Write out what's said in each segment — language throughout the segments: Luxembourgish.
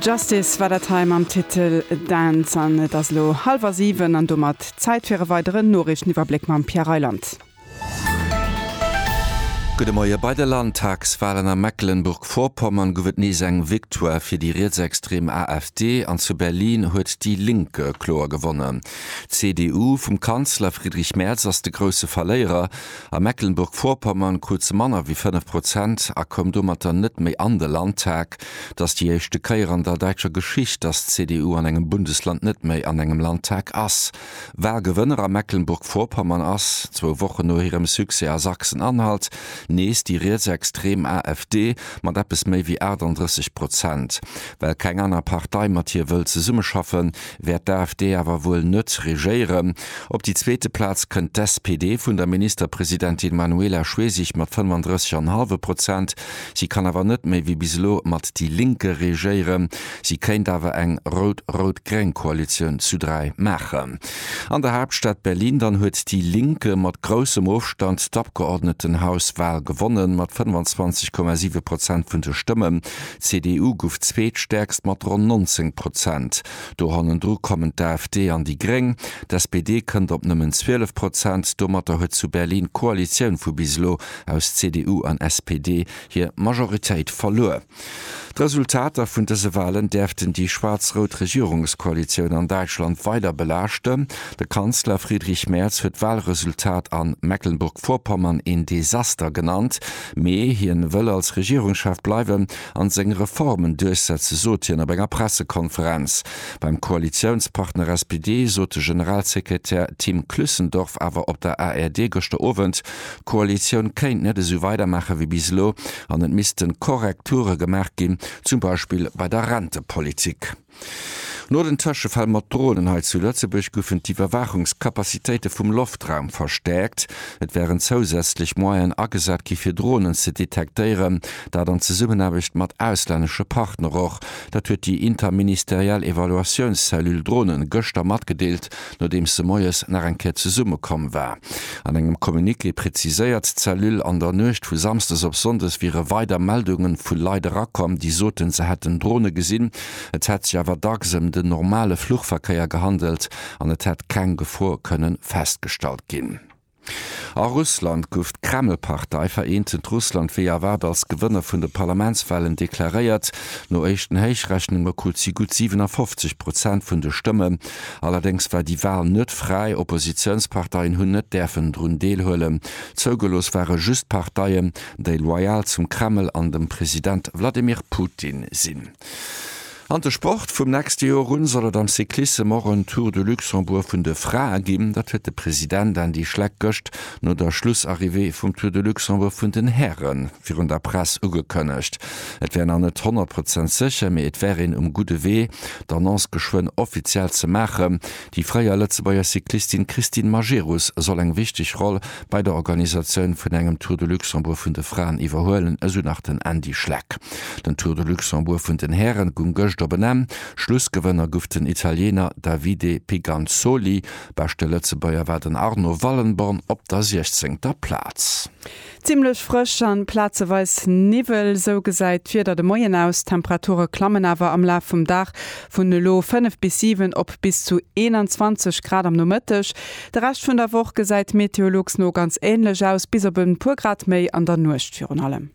Justice war dat hei mam Titel Dance. An et ass elo hallwer 7 an domat Zäit fir e weideren Noriichteniwwerbléck mam Pierre Reyland. Gudde Moie, Bei de Landtagswalen a Mecklenburg-Vorpommern gouf et nees eng Victoire fir déi rietsextrem AfD an zu Berlin huet déi Linke kloer gewonnen. D'CDU vum Kanzler Friedrich Merz ass de grousse Verléierer. A Mecklenburg-Vorpommern krut se manner wéi 5 Prozent a koum domatter net méi an de Landtag. Et ass déi éischte Kéier an der däitscher Geschicht, dass d'CDU an engem Bundesland net méi an engem Landtag ass. Wahlgewënner a Mecklenburg-Vorpommern ass, zwou Wochen no hirem Succès a Sachsen-Anhalt, nees déi rietsextrem AfD mat eppes méi wéi 38 Prozent. Well keng aner Partei mat hir wëll zesummeschaffen, wäert d'AfD awer wuel net regéieren. Op déi zweete Plaz kënnt d'SPD vun der Ministerpresidentin Manuela Schwesig mat 35 an hallwe Prozent. Si kann awer net méi wéi bis elo mat déi Linke regéieren. Si kéint awer eng rout-rout-gréng Koalitioun zu 3 maachen. An der Haaptstad Berlin dann huet déi Linke mat groussem Ofstand d'Abgeordnetenhaus-Wal gewonnen, mat 25,7 Prozent vun de Stëmmen. D'CDU gouf zweetstäerkst mat ronn 19 Prozent. Do hannendru kommen d'AfD an déi Gréng. D'SPD kënnt op nëmmen 12 Prozent. Domatter huet zu Berlin d'Koalitioun vu bis elo aus CDU an SPD hir Majoritéit verluer. D'Resultater vun dëse Walen däerften déi schwaarz-rout Regierungskoalitioun an Däitschland weider belaaschten. De Kanzler Friedrich Merz huet d'Walresultat a Mecklenburg-Vorpommern een Desaster genannt. Mee hien wëll als Regierungschef bleiwen an seng Reformen duerchsetzen, sot hien op enger Pressekonferenz. Beim Koalitiounspartner SPD sot de Generalsekretär Tim Klüssendorf awer op der ARD gëschter Owend, d'Koalitioun kéint net esou weidermaache wéi bis elo an et missten Korrekture gemaach ginn, zum Beispill bei der Rentepolitik. No den Tëschefäll mat Dronen hei zu Lëtzebuerg goufen d'Iwwerwaachungskapazitéite vum Loftraum verstäerkt. Et wären zousätzlech Moyene agesat gi fir Dronen ze detektéieren, dat an Zesummenaarbecht mat auslännesche Partner och. Dat huet déi interministeriell Evaluatiounscellule Drone gëschter matgedeelt. nodeems se moies nach eng Kéier zesumme komm war. An engem Communiqué präziséiert d'Cellule, an der Nuecht vu Samsdes op Sonndes wiere weider Meldunge vu Leit erakomm, déi soten, se hätten Drone gesinn. Et hätt sech awer dacks ëm den normale Fluchverkéier gehandelt an et hätt keng Gefor kënnen festgestallt ginn. A Russland guff d'Kreml-Partei Vereentend Russland wéi erwaart als Gewënner vun de Parlamentswahlen deklaréiert. No éischten Héichrechnunge krut si gutt 57 Prozent vun de Stëmmen. Allerdéngs war déi Wahl net fräi, Oppositiounsparteien hunn net däerfen drun deelhuelen. Zougelooss ware just Parteien, déi loyal zum Kreml an dem President Wladimir Putin sinn. An de Sport, Vum nächste Joer un soll et am Cyclissem och en Tour de Luxembourg vun de Frae ginn. Dat huet de President Andy Schleck gëscht no der Schlussarrivée vum Tour de Luxembourg vun den Häre virun der Press ugekënnegt. Et wär nach net 100 Prozent sécher, mee et wär een um gudde Wee, d'Annonce geschwënn offiziell ze maachen. Déi fréier Lëtzebuerger Cyclistin Christine Majerus soll eng wichteg Roll bei der Organisatioun vun engem Tour de Luxembourg vun de Fraen iwwerhuelen, esou nach den Andy Schleck. Den Tour de Luxembourg vun den Häre gung gëscht op en Enn. Schlussgewënner guff den Italiener Davide Piganzoli. Beschte Lëtzebuerger war den Arno Wallenborn op der siechzéngter Plaz. Zimmlech frësch an plazeweis Niwwel, sou gesäit d'Wieder de Moien aus. D'Temperature klammen awer am Laf vum Dag vun elo 5 bis 7 op bis zu 21 Grad am Nomëtteg. De Rescht vun der Woch gesäit Meteolux no ganz änlech aus, bis op e puer Grad méi an der Nuecht virun allem.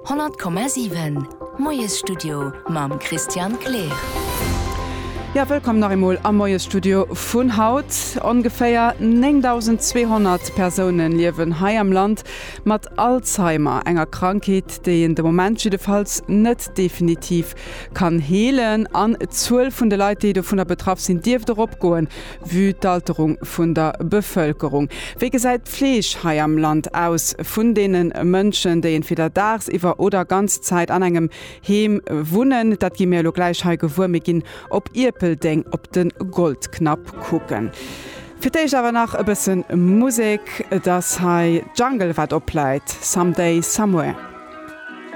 100,7 Moiesstudio mam Christian Kleer. Jo, wëllkomm nach eemol am Moiesstudio vun haut. Ongeféier 9.200 Persoune liewen hei am Land mat Alzheimer, enger Krankheet, déi een de Moment jiddefalls net definitiv kann heelen. An d'Zuel vun de Leit, déi dovunner betraff sinn, dierft och opgoen, Vue d'Alterung vun der Bevëlkerung, wéi gesäit d'Fleeg hei am Land aus vun deene Mënschen, déi entweder dagsiwwer oder ganz Zäit an engem Heem wunnen? Dat gi mir elo gläich hei gewuer. Mir ginn op Ierpeldeng op de Goldknapp kucken. Fir d'éischt awer nach e bësse Musek. Et ass hei Jungle wat opläit, Someday, Somewhere.